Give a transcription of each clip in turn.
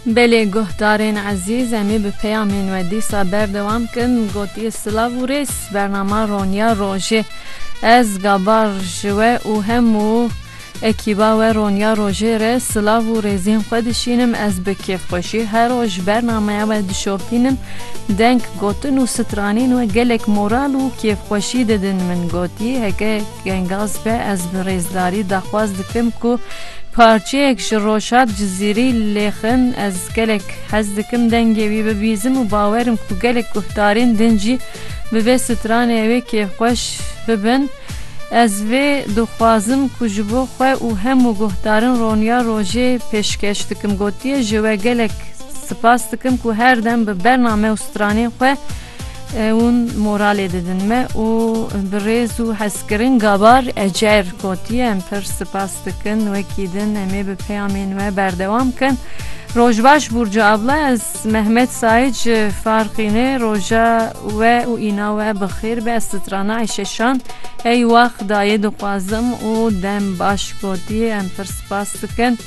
Belê guhdarên ezîz em ê bi peyamên we dîsa berdewam kin gotiye silav û rêz bernama roniya rojê ez gabar ji we û hemû ekîba we roniya rojê re silav û rêzên xwe dişînim ez bi kêfxweşî her roj bernamaya we dişopînim deng gotin û stranên we gelek moral û kêfxweşî didin min gotiye heke Gengaz be ez bi rêzdarî daxwaz dikim ku parçeyek ji Roşad Cizîrî lêxin ez gelek hez dikim dengê wî bibîzim û bawer im ku gelek guhdarên din jî bi vê stranê wê kêfxweş bibin ez vê dixwazim ku ji bo xwe û hemû guhdarin roniya rojê pêşkeş dikim gotiye ji we gelek spas dikim ku her dem bi bername û stranên xwe Hûn moralê didin me û bi rêz û hezkirin Gabar Ecer gotiye, Em pir sipas dikin wekî din em ê bi peyamên we berdewam bikin. Rojbaş Burcu abla ez Mehmet Said ji Farqînê roja we û îna we bi xêr be ez strana Ayşe Şan ey wax dayê dixwazim û dem baş gotiye em pir sipas dikin.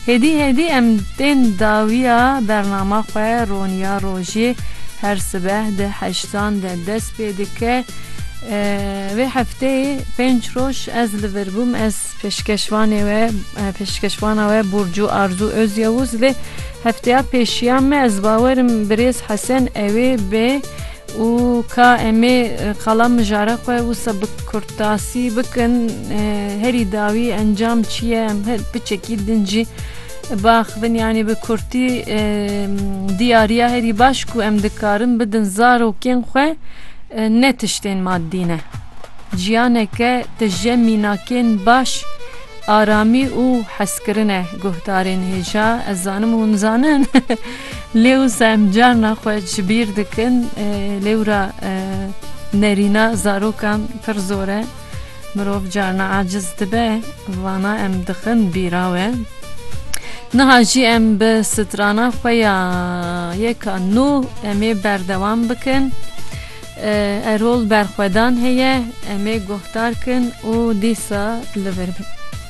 Hêdî hêdî em tên dawiya bernama xwe roniya rojê her sibeh di heştan de dest pê dike. Vê hefteyê pênc roj ez li vir bûm ez pêşkeşvanê we pêşkeşvana we Burcu Arzu Özyavuz lê hefteya pêşiya me ez bawerim birêz Hesen ewê bê Û ka em ê qala mijara xwe wisa bi kurtasî bikin, herî dawî encam çi ye em piçekî din jî biaxivin. Yanî bi kurtî diyariya herî baş ku em dikarin bidin zarokên xwe ne tiştên maddî ne. Jiyaneke tije mînakên baş, aramî û hezkirin e. Guhdarên hêja ez zanim hûn zanin. Lê û zem carna xwe ji bîr dikin. Lêwra nerîna zarokan pir zor e. Mirov carna aciz dibe. Vana em dixin bîra we. Niha jî em bi strana xwe ya yeka nû em ê berdewam bikin. Erol berxwedan heye. Em ê guhdar kin û dîsa li vir bin.